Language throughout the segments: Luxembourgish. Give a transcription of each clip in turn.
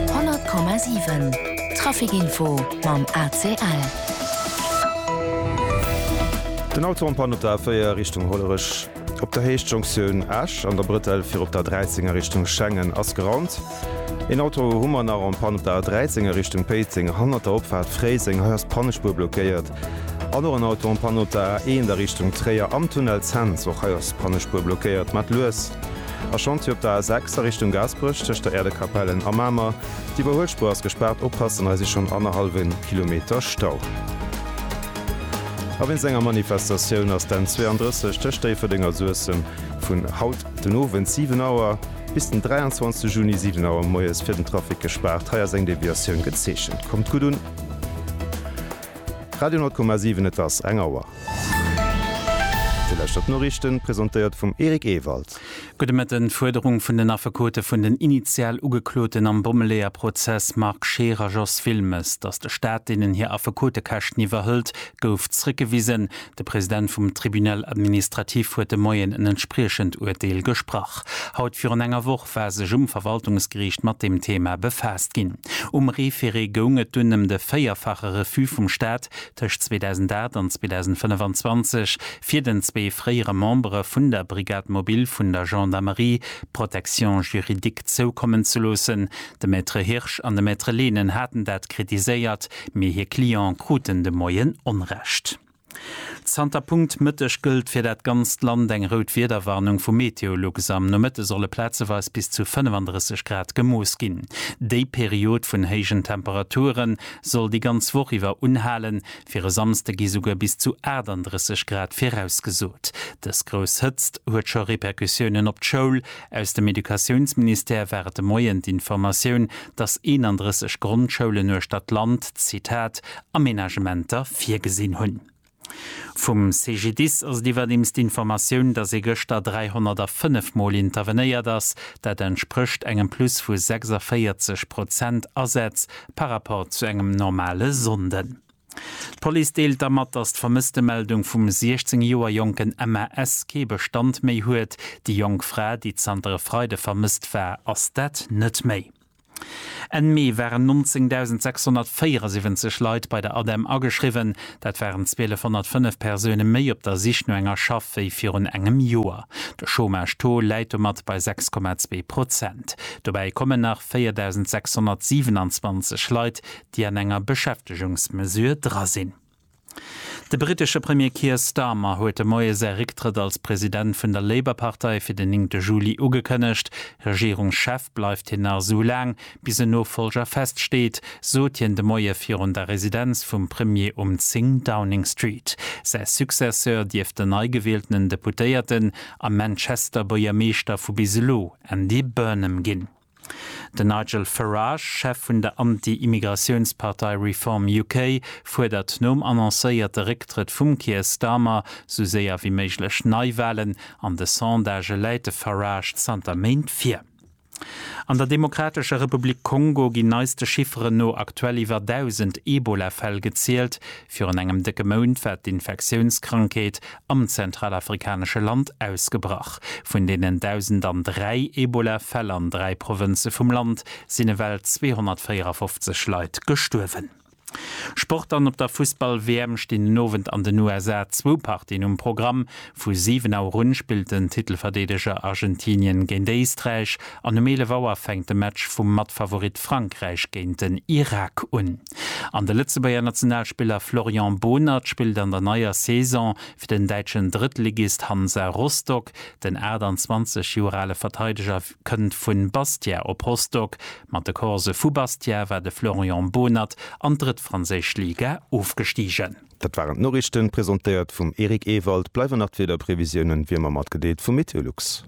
100,7 Trafic-Info mam ACL. Den Autorenpan op der A4 Richtung Hollerech op der Héicht Jonktioun Esch an der Brëtell fir op der A13 a Richtung Schengen ass geraumt. Een Auto hu mer nach en Panne op der A13 a Richtung Péiteng hanner der Opfahrt Fréiseng. Hei ass d'Pannespuer blockéiert. An och en Auto en panne op der A1 a Richtung Tréier am Tunnel Cents. Och hei ass d'Pannespuer blockéiert. Mat lues a Chantier op der A6 a Richtung Gaasperech tëscht der Äerdekapellen a Mamer. D'Iwwerhuelspuer ass gespaart, oppassen, hei si schonn annerhallwe Kilometer Stau. A wéinst enger Manifestatioun ass d'N 32 tëscht Déifferdeng a Suessem vun haut den Owend 7 Auer bis den 23 Juni 7 Auer moies fir den Trafic gespaart. Hei ass eng Deviatioun gezeechent. Kommt gutt un. Radio 10,7 Et ass eng Auer. Déi leschter d'Noriichten, presentéiert vum Eric Ewald. Gudde Mëtten. D'Fuerderung vun den Affekote vun den initial Ugekloten am Bommeleeër-Prozess Marc Scheer a Jos Wilmes, datt de Staat deenen hir Affekotekäschten iwwerhëlt, gouf zréckgewisen. De President vum Tribunal administratif huet de Moien en entspriechend Urteel gesprach. Haut virun enger Woch war sech um Verwaltungsgeriicht mat deem Thema befaasst ginn. Um Référé goung et dunn ëm de véierfache Refus vum Staat tëscht 2008 an 2025 fir den zwee fréiere Membere vun der Brigade mobile vun der Gendarmerie d'Protection juridique zoukommen ze loossen. De Maître Hirsch an de Maître Lehnen haten dat kritiséiert, Mee hir Cliente kruten de Moien Onrecht. Zanter Punkt Mëtteg gëllt fir dat ganzt Land eng rout Wiederwarnung vu Meteolux. Am Nomëtte solle plazeweis bis zu 35 Grad gemooss ginn. Déi Period vun héijen Temperature soll déi ganz Woch iwwer unhalen. Fir e Samsde gi souguer bis zu 38 Grad virausgesot. Dës grouss Hëtzt huet scho Repercussiounen op d'Schoul, Aus dem Educatiounsministère war et de Moien d'Informatioun, datt 31 Grondschoulen uechter d'Land, Zitat, Amenagementer virgesinn hunn. Vum CGDIS ass et iwwerdeems d'Informatioun, datt ee gëschter 305 Mol intervenéiert ass. Dat entsprécht engem Plus vu 46 Prozent Asätz par Rapport zu engem normale Sonnden. D'Police deelt da mat, datt d'Vermësstemeldung vum 16 Joer jonken MAS kee Bestand méi huet. Déi jonk Fra, déi zanter e Freide vermësst war, ass dat net méi. Enn Mee waren 19.674 Leit bei der ADEM ageschriwwen. Dat waren 1205 Persoune méi op der Sich no enger Schaff wéi virun engem Joer. De Chômage-Taux läit domat bei 6,2 Prozent. Dobäi kommen nach 4.627 Leit, déi an enger Beschäftegungsmesure dra sinn. De brittesche Premier Keir Starmer huet de Moie säi Récktrëtt als President vun der Labour-Partei fir den 9 Juli ugekënnegt. Regierungschef bleift hien nach esou laang, bis en Nofollger feststeet, sot hien de Moie virun der Residenz vum Premier um 10 Downing Street. Säi Successeur dierft den neigewieltenen Deputéierten a Manchester-Buergermeeschter vu bis elo, Andy Burnham, ginn. Den Nigel Farage, Chef vun der Anti-Immigratiounspartei Reform UK, fuerdert nom annoncéierte Récktrëtt vum Keir Starmer sou séier wéi méiglech Neiwalen. An de Sondagë läit de Farage zanter Méint vir. An der Demokratescher Republik Kongo ginn neiste Chifferen no aktuell iwwer 1.000 Ebola-Fäll gezielt, Virun engem décke Mount war d'Infektiounskrankheet am zentralafrikanesche Land ausgebrach. Vun deenen 1.003 Ebola-Fäll an dräi Provënze vum Land sinn ewell 254 Leit gestuerwen. Sport An op der Fussball-WM stinn den Owend an den USA zwou Partien um Programm. Vu 7 Auer un spillt den Titelverdeedeger Argentinien géint Éisträich an um 11 Auer fänkt de Match vum Matfavorit Frankräich géint den Irak un. An de Lëtzebuerger Nationalspiller Florian Bohnert spillt an der neier Saison fir den däitschen Drëttligist Hansa Rostock. Den 28 Joer ale Verteideger kënnt vu Bastia op Rostock. Mat de Corse vu Bastia war de Florian Bohnert an d'drëtt franséisch Liga ofgestigen. Dat waren d'Noriichten, presentéiert vum Eric Ewald. Bleiwen nach d'Wiederprevisiounen wéi ëmmer matgedeelt vum Meteolux.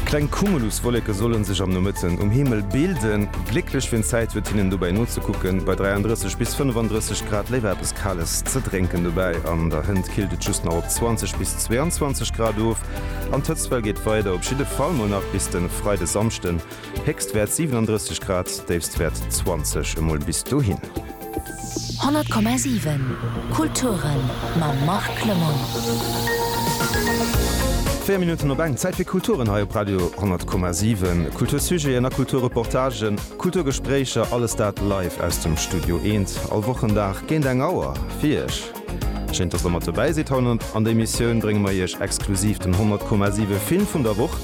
Kleng Cumuluswolleke solle sech am Nomëtten um Himmel bilden. Glécklech fir d'Zäit wird hinnen dobäi nozekucken, bei 33 bis 35 Grad. Léiwer eppes Kales ze drénken dobäi, an der Hënt killt et just nach op 20 bis 22 Grad of an d'Hëtztwell geet weider, op jidde Fall mol nach bis de Freide Samschden. Héchstwäert 37 Grad, Déifstwäert 20. Emol bis dohin. 100,7 Kulturen mam Marc Lemoine. 4 Minutten op eng, Zäit fir Kulturen hei op Radio 10,7. Kultursujeten a Kulturreportagen, Kulturgespréicher, alles dat live aus dem Studio Eent, all Wochendag géint eng Auer fir Iech. Schéint, dass Der mat dobäi sidd. Haut an der Emissioun brénge mer Iech exklusiv den 100,7 Film vun der Woch.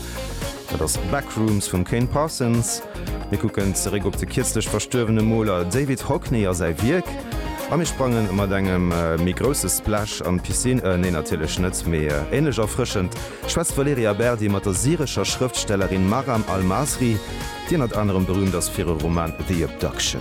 Dat ass Backrooms vum Kane Parsons. Mir kucken zeréck op de kierzlech verstuerwene Moler David Hockney a säi Wierk. A mir sprange mat engem méi grousse Splash an d'Piscine, nee natierlech net, mee änlech erfrëschend schwätzt d'Valerija Berdi mat der syrescher Schrëftstellerin Maram Almasri, déi ënnert anerem berüümt ass fir e Roman The Abduction.